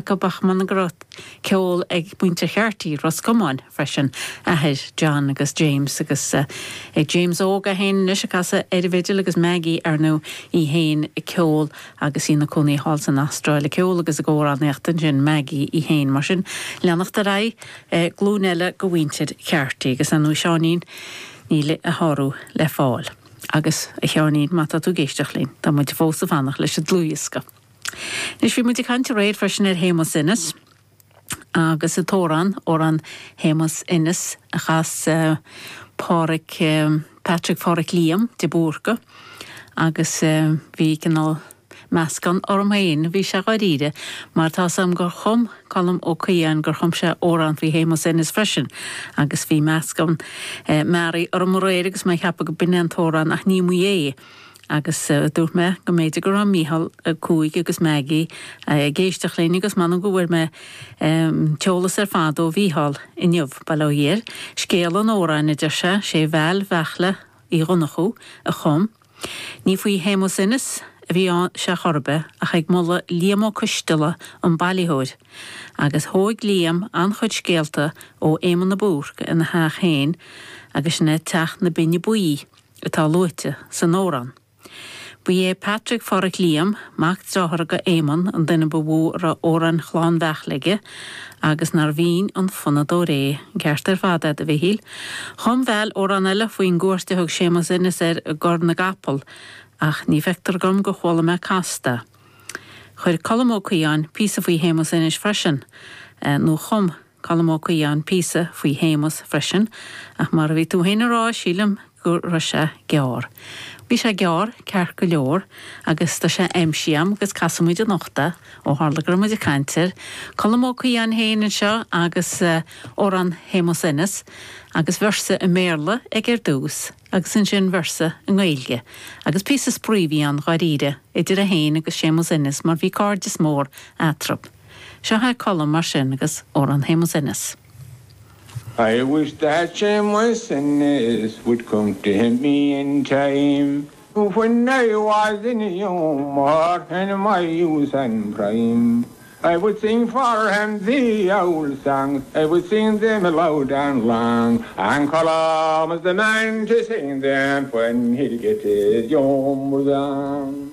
go mbeadh m'anam go raibh ceol ag muintir Carty Ros Comáin freisin, athair John agus James, agus ag James Óg é féin anois ag casadh ar an bhfidil agus Maggie ar ndóigh í féin ag ceol agus í ina cónaí thall san Astráil ag ceol agus ag amhránaíocht ansin Maggie í féin. Mar sin, leanacht ar aghaidh, glúin eile de mhuintir Carty agus ar ndóigh Seáinín níl a shárú le fáil. Agus, a Sheáinín, má tá tú ag éisteacht linn, tá muid fós ag fanacht leis an dlúthdhiosca. Anois, bhí muid ag caint aréir freisin ar Shéamus Ennis agus an t-amhrán, amhrán Shéamus Ennis a chas Pádraig, Patrick Pháraic Liam de Búrca agus bhí cineál meascán orm féin, bhí sé dháiríre, mar tá 'fhios a'm gur chum Colm Ó Caodháin, gur chum sé amhrán faoi Shéamus Ennis freisin agus bhí meascán mearaí orm aréir agus mé ag ceapadh go b'in é an t-amhrán ach ní mba é. Agus dúirt mé go mb'fhéidir go raibh Mícheál Ó Cuaig agus Maggie ag éisteacht linn agus m'anam go bhfuair mé an t-eolas ar fad ó Mhícheál inniu. Bail ó Dhia air. Scéal an amhráin, a deir sé, sé Val Bheartla Uí Dhonnchú a chum. Ní faoi Shéamus Ennis a bhí sé chor ar bith ach ag moladh Liam Ó Coisteala, an bailitheoir. Agus thóig Liam an-chuid scéalta ó Éamon a Búrc ina theach féin agus sin é Teach na Binne Buí. atá luaite san amhrán. Ba é Patrick Pháraic Liam, mac dearthár do Éamonn, an duine ba mhó a raibh amhráin Chlann Bheartla aige agus nár bhinn an fonnadóir é. An ceart ar fad a'd, a Mhichíl. Chum Val amhrán eile faoin gcuairt a thug Séamus Ennis air i gCora na gCapall, ach ní fheictear dhom gur chuala mé casta é. Chuir Colm Ó Caodháin píosa faoi Shéamus Ennis freisin, nó chum. Colm Ó Caodháin píosa faoi Shéamus freisin, ach mar a bhí tú féin a rá, sílim go raibh sé gearr. Bhí sé gearr, ceart go leor, agus tá sé aimsithe a'm agus casfaimid anocht é, ó tharla go raibh muid ag caint air, Colm Ó Caodháin féin anseo agus amhrán Shéamus Ennis, agus véarsa i mBéarla aige ar dtús, agus ansin véarsa i nGaeilge, agus píosa spraoi a bhí ann, dháiríre, idir é féin agus Séamus Ennis, mar bhí cairdeas mór eatarthu. Seo é Colm, mar sin, agus Odhrán Shéamuis Ennis. I wish that Shéamuis Ennis would come to help me in time When I was in humour in my youth and prime I would sing for him the old songs I would sing them loud and long And Colm is the man to sing them When he'll get his humour gone.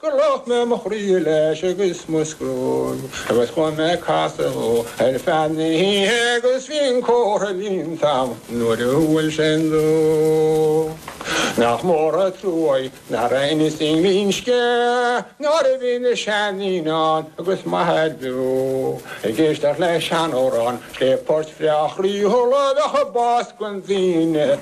Gur lách mé mo chroí leis agus mo scrúid Agus chuaigh mé ag casadh ar feadh na hoíche Agus bhí an comhartha iontach nuair a bhuail sé an dúch Nach mór an truaigh nach raibh Ennis i nGlinsce Nuair a bhí na seandaoine ann agus m'athair beo Ag éisteacht le sean-amhráin, scéal poirt bhreá chroíúil A bheadh ag bás gan daoine.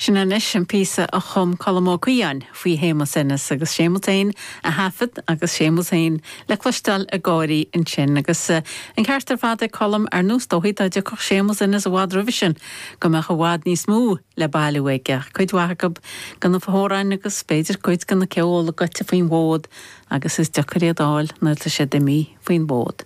Sin anois an píosa a chum Colm Ó Caoidheáin faoi Shéamus Ennis agus Séamus féin a thaifead agus Séamus féin le cloisteáil ag gáirí ansin agus an ceart ar fad ag Colm, ar nós dóigh dhá dtiocfadh Séamus Ennis i bhfad roimhe sin go mbeadh i bhfad níos mó le bailiú aige, cuid mhaith go na hamhráin agus b'fhéidir cuid go na ceoil, goidte faoin bhfód agus is deacair iad a fháil nuair atá siad imithe faoin bhfód.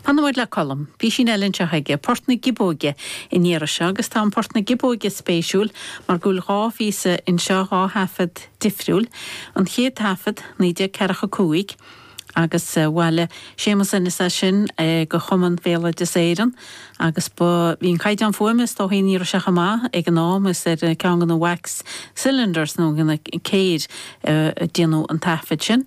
Fanfaidh muid le Colm. Písín eile anseo aige, Port na Giobóige an iarraidh seo, agus tá an Port na Giobóige spéisiúil mar go bhfuil dhá phíosa anseo, dhá thaifead difriúil. An chéad taifead, 1945, agus bhailigh Séamus Ennis é sin go Chumann Bhéaloideas Éireann agus ní bhí an caighdeán fuaime is dóichí an iarraidh seo chomh maith ag an am, is ar cheann de na wax cylinders nó de na céir a déanadh an taifead sin.